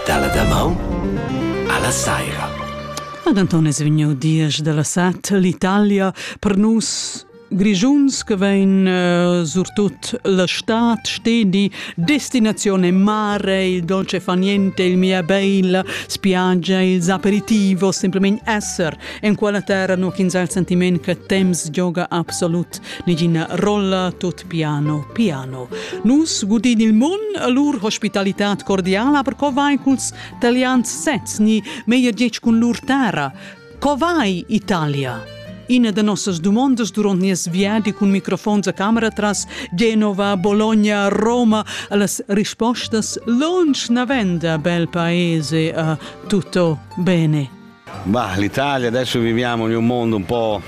Dalla damaun alla saira. Ed Anton es vegniu diesch dalla set l'Italia per nus Grischuns che vein uh, surtut la stad stedi, destinazione mare, il dolce fa niente, il mia bella, spiaggia, il aperitivo, semplicemente esser in quella terra no ins al sentiment che temps gioca absolut nigina rolla, tut Piano, piano. Nus gudin il mun a lur hospitalità cordiala per co vai culs talians sezs ni meglier detg cun lur terra. Co vai Italia? Ina da nossas dumondas durant nies viadi cun microfons a camera tras Genova, Bologna, Roma, las rispostas lunsch navenda bel paese a tutto bene. Bah, l'Italia adesso viviamo in un mondo un po'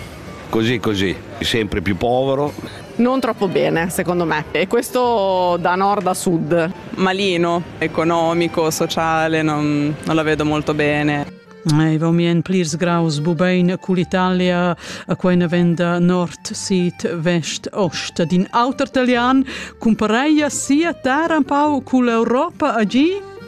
così così, sempre più povero. Non troppo bene, secondo me. E questo da nord a sud. Malino, economico, sociale, non, non la vedo molto bene. E vau mien plirs graus bubein cull'Italia a quella venda nord, sid, vest, ost din auter italian cumpareia sia terra un pau cull'Europa a gi?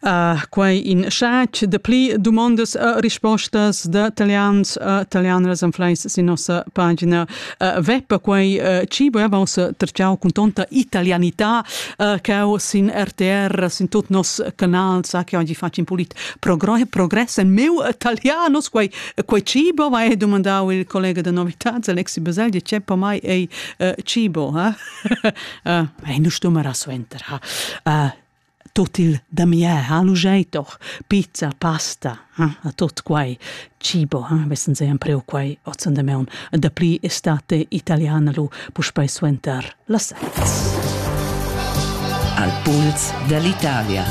Uh, quai in schac de pli dumondas e rispostas de italians e italianas en fleis sin nossa pagina uh, web quai uh, ci voevos terciau con tonta italianità uh, che ho sin RTR sin tot nos canal sa che oggi faccio in pulit progress en meu italianos quai quai cibo va e domandau il collega de novitats Alexi Beseldi c'è po mai ei uh, cibo ha uh, ei nu stumera suenter ha uh, Tot il damier ha lu gei doch pizza, pasta, eh? a tot quei cibo, eh? vessen se empreu quei ozzen de meun. E dapli estate italiana lu puspei suenter las seits. Al puls dall'Italia.